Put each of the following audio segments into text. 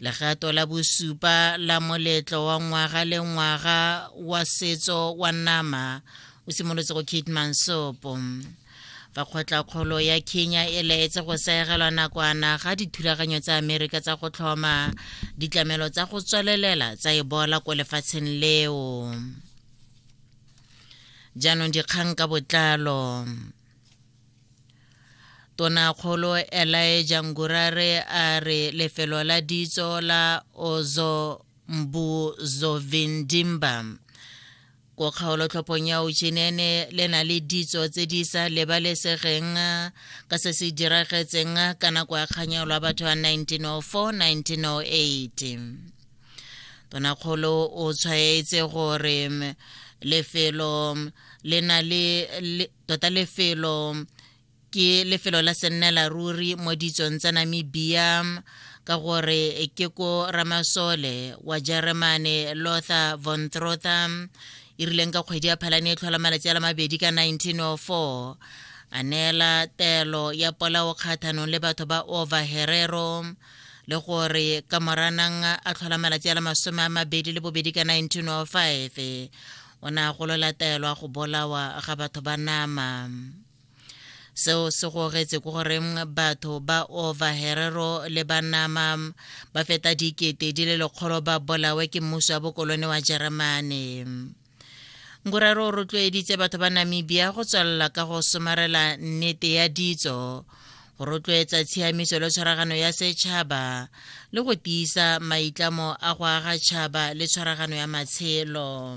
legato la bosupa la moletlo wa ngwaga le ngwaga wa setso wa nama o simolotse go kate mansopo fa kgotla-kgolo ya kenya e laetse go seegelwa nakwana ga dithulaganyo tsa amerika tsa go tlhoma ditlamelo tsa go tswelelela tsa ebola ko lefatsheng leo jaanong dikgang ka botlalo Tonakgolo Elijah Ngurare a re lefelo la ditso la Ozombuzovindimba ko kgaolotlhophong ya Uchinene le na le ditso tse di sa lebalesegeng ka se se diragetseng ka nako ya kganyao lwa batho ya 1904-1908 tonakgolo o tshwaetse gore lefelo le na le tota lefelo ke lefelo la sennela ruri mo ditsong tsa namibia ka gore ke ko ramasole wa jeremane lother von trother e rileng ka kgwedi ya phalane e tlhola malatsi a la mabedi ka 1904 a neela telo ya polao kgathanong le batho ba over herero le gore ka moranang a tlhola malatsi a le masome a mabedi le bobedi ka 1905 o ne a golola taelo a go bolawa ga batho ba nama seo se gogetse ko goreng batho ba ova herero le banama ba feta dikete di le lekgolo ba bolawe ke mmuso wa bokolone wa jeremane ngoraro o rotloeditse batho ba namibia go tswelela ka go somarela nnete ya ditso go rotloetsa tshiamiso le tshwaragano ya setšhaba le go tiisa maitlamo a go aga tšhaba le tshwaragano ya matshelo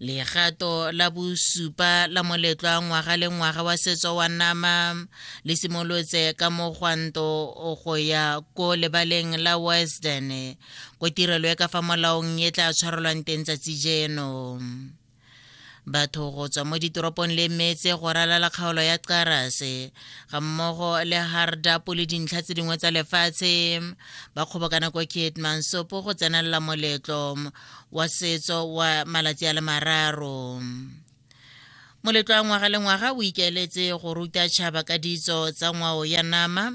legato la bosupa la moletlo wa ngwaga le ngwaga wa setso wa nama le simolotse ka mogwanto go ya ko lebaleng la western ko tirelo e ka fa molaong e tla tshwarelwang teng tsatsi jeno batho go tswa mo ditoropong le metse go ralala kgaolo ya qarase ga mmogo le hardapo le dintlha tse dingwe tsa lefatshe ba kgobokana kwa kietmansopo go tsenelela moletlo wa setso wa malatsi a le mararo moletlo wa ngwaga le ngwaga o ikaeletse go ruta tšhaba ka ditso tsa ngwao ya nama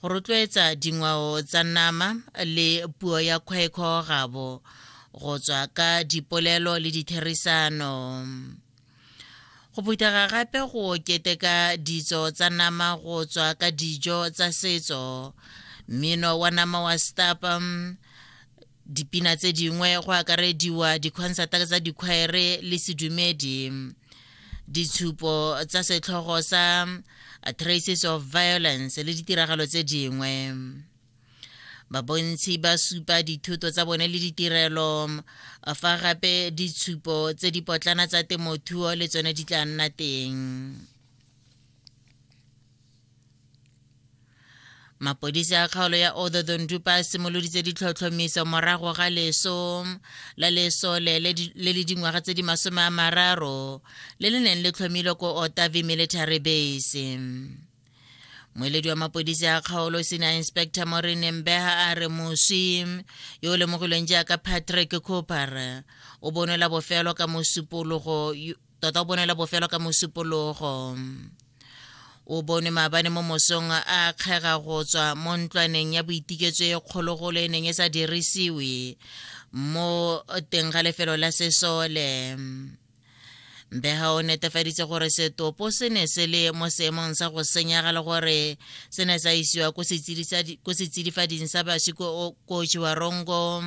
go rotloetsa dingwao tsa nama le puo ya kgwekgo gabo go tswa ka dipolelo le ditherisano go phuthega gape go keteka ditso tsa nama go tswa ka dijo tsa setso mmino wa nama wa stapa dipina tse dingwe go akarediwa dikhonsata tsa dikhwaere le sedumedi ditshupo tsa setlhogo sa uh, traces of violence le ditiragalo tse dingwe babontshi ba supa dithuto tsa bone le ditirelo um, fa gape ditshupo tse di potlana tsa temothuo le tsone di tla nna teng mapodisi a kgaolo ya ododondupa a simoloditse ditlhotlhomiso morago ga leso la lesole le le dingwaga tse di masome a mararo le le neng le tlhomilwe ko otavi military base moeledi wa mapodisi a kgaolo senior inspector morene mbeha a re moswi yo o lemogilweng jaaka patrick cooper o bonela bofelo ka mosupologo tota o bonela bofelo ka mosupologo o bonwe maabane mo mosong a kgega go tswa mo ntlwaneng ya boitiketso e kgologolo e neng e sa dirisiwe mo teng ga lefelo la sesole mbega o netefaditse gore setopo se ne se le mo seemong sa go senyega le gore se ne sa isiwa ko setsidifading sa baswi ko chiwarongo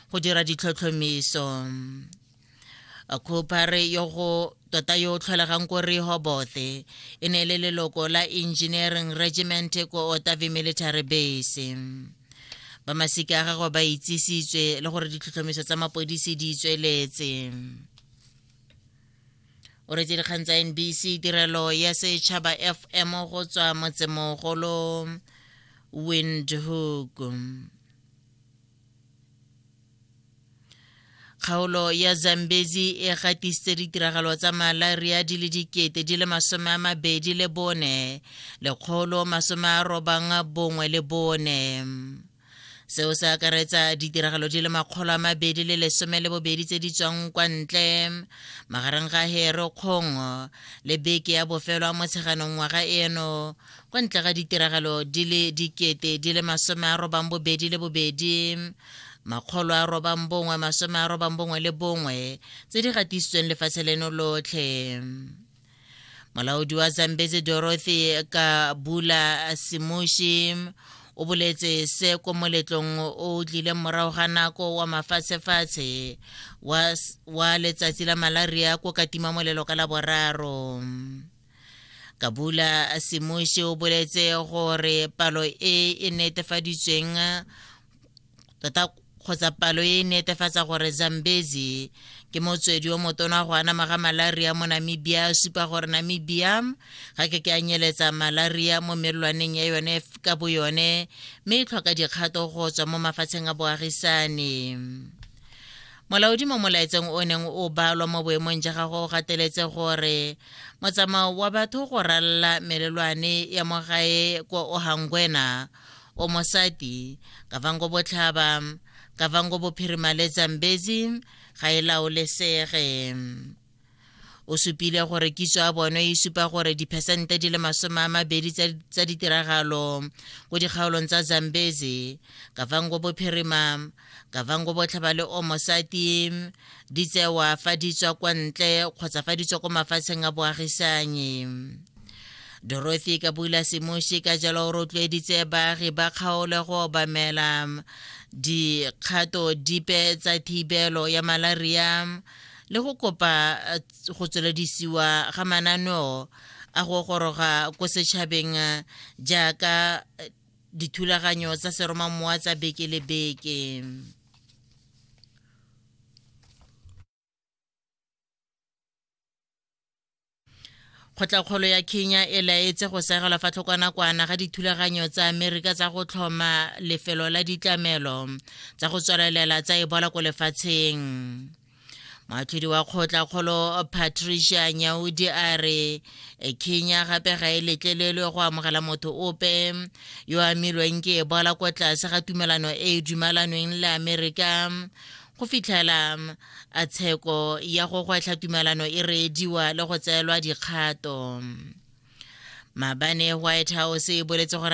go dira ditlhotlhomiso khupare yo go tota yo o tlholegang ko rehobothe e ne e le leloko la engineering regiment ko otavi military base ba masika a gagwe ba itsisitswe le gore ditlhotlhomiso tsa mapodisi di tsweletse o retse dikgang tsa nbc tirelo ya setšhaba fm go tswa motsemogolo windhoek kgaolo ya zambezi e gatisitse ditiragalo tsa malaria di le dikete di le masome a mabedi le bone lekgolo masome a robang bongwe le bone seo se akaretsa ditiragalo di le makgolo a mabedi le lesome le bobedi tse di tswang kwa ntle magareng ga hero kgong le beke ya bofelo a motsheganong ngwaga eno kwa ntle ga ditiragalo di le dikete di le masome a robang bobedi le bobedi makgolo a robang bongwe masome a robang bongwe le bongwe tse di gatisitsweng lefatshe leno lotlhe molaodi wa zambezi dorothy ka bula simushi o boletse se ko moletlong o tlileng morago ga nako wa mafatshefatshe wa letsatsi la malaria ko katima molelo ka la boraro kabula semuši o boletse gore palo e e netefaditsweng tota kgotsa palo e netefatsa gore zambezi ke motswedi o motona go anama ga malaria mo namibia supa gore namibia ga ke ke a nyeletsa malaria mo melelwaneng ya yone ka bo yone mme e tlhoka dikgato go tswa mo mafatsheng a boagisane molaodi mo molaetseng o neng o balwa mo boemong ja gagwe o gateletse gore motsamao wa batho go ralla melelwane ya mo gae ko ohangwena o mosati kavango botlhaba kavango bophirima le zambezi ga e laolesege o supile gore kitso ya bone e supa gore diphesente di le masome a mabedi tsa ditiragalo ko dikgaolong tsa zambezi kavango bophirima kavango botlhaba le omosati di tsewa fa di tswa kwa ntle kgotsa fa di tswa ko mafatsheng a boagisanyi dorothy kabula semoshi ka jalo o rotloeditse baagi ba kgaolo go obamela dikgato dipe tsa thibelo ya malaria le go kopa eh, go tsweledisiwa ga mananeo a go goroga ko setšhabeng eh, jaaka eh, dithulaganyo tsa seromamowa tsa beke le beke kgotlakgolo ya kenya e laetse go segelwa fa tlhokwanakwana ga dithulaganyo tsa amerika tsa go tlhoma lefelo la ditlamelo tsa go tswelelela tsa ebola ko lefatsheng moatlhodi wa kgotlakgolo patricia nyaudi a re e, kenya gape ga e letlelelwe go amogela motho ope yo amilweng ke ebola ko tlase ga tumelano e e dumalanweng le amerika go fitlhela mm, a tsheko ya go gwetlha tumelano e reediwa le go tseelwa dikgato mm. mabane white house e boletse gore